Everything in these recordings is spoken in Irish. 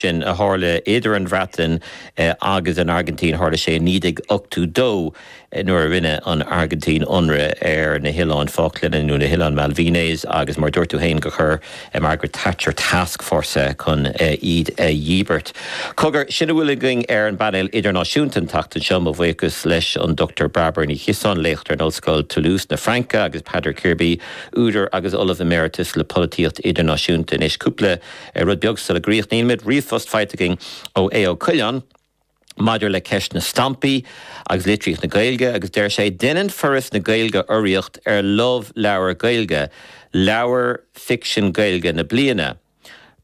sin a tharla idir an Bhreatain agus an Airgintín. Tharla sé i 1982 nuair a rinne an Airgintín ionradh ar na hOileáin Falkland, nó na hOileáin Malvinas, agus mar a dúirt tú féin gur chuir Margaret Thatcher task force chun iad a dhíbirt. Cogar, sin a bhfuil againn ar an bPainéal Idirnáisiúnta an tseachtain seo, mo bhuíochas leis an Dr Bairbre Ní Chiosáin, léachtóir in Ollscoil Toulouse na Fraince agus Peadar Kirby, údar agus Ollamh Emeritus le Polaitíocht Idirnáisiúnta anois. Cúpla. Ar rud beag sula gcríochnaímid, ríomhphost faighte againn ó Aodh Ó Coileáin maidir le ceist na stampaí agus litríocht na Gaeilge agus deir sé, Deineann Foras na Gaeilge urraíocht ar Love Leabhar Gaeilge, Leabhar Ficsin Gaeilge na Bliana.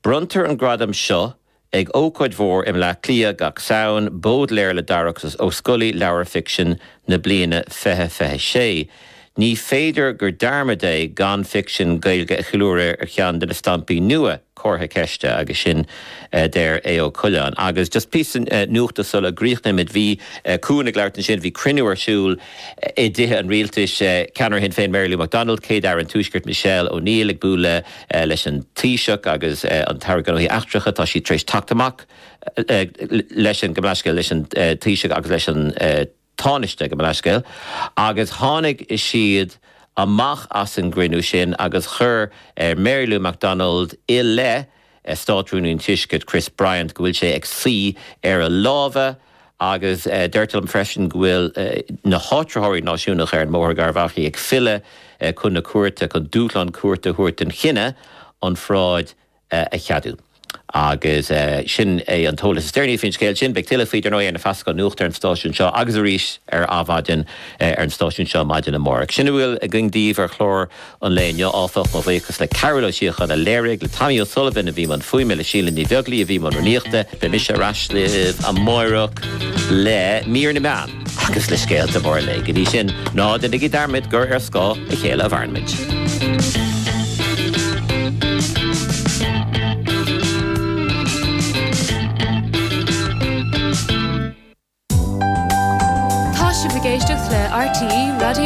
Bronntar an gradam seo ag ócáid mhór i mBleá Cliath gach Samhain, Bódléar le Darach Ó Scolaí Leabhar Ficsin na Bliana 2026. Ní féidir gur dearmad é gan ficsean Gaeilge a cheiliúradh ar cheann de na stampaí nua comhartha ceiste agus sin a deir Aodh Ó Coileáin. Agus just píosa nuachta sula gcríochnaímid, bhí Cuan ag labhairt ansin, bhí cruinniú ar siúl i dTithe an Rialtais, Ceannaire Shinn Féin Mary Lou McDonald, Céad-Aire an Tuaiscirt Michelle O'Neill ag bualadh leis an Taoiseach agus an tAire Gnóthaí Eachtracha, tá siad tar éis teacht amach leis an, gabh mo leithscéal, leis an Taoiseach agus leis an. Tánaiste gabh mo leithscéal agus tháinig siad amach as an gcruinniú sin agus chuir Mary Lou McDonald i leith Státrúnaí an Tuaiscirt, Chris Bryant, go bhfuil sé ag suí ar a lámha agus deirtear liom freisin go bhfuil na háitritheoirí náisiúnacha ar an mBóthar Garbh Achaidh ag filleadh chun na cúirte chun dúshlán cúirte a thabhairt don chinneadh an pharáid a cheadú. Agus sin é an t-eolas is deireanaí faoin scéal sin. Beidh tuilleadh faoi, dar ndóigh, ar na feasacháin nuachta ar an stáisiún seo agus arís ar Adhmhaidin ar an stáisiún seo maidin amárach. Sin a bhfuil againn daoibh ar chlár an lae inniu, áfach. Mo bhuíochas le Cearbhall Ó Síocháin a léirigh, le Tommy O'Sullivan a bhí i mbun fuaime, le Síle Ní Bheaglaoich a bhí i mbun rúnaíochta. Beidh mise ar ais libh amárach le mír na meán. Agus le scéalta móra an lae. Go dtí sin, ná déanaigí dearmad gur ar scáth a chéile a mhairimid. Tá sibh ag éisteacht le RTÉ Raidió.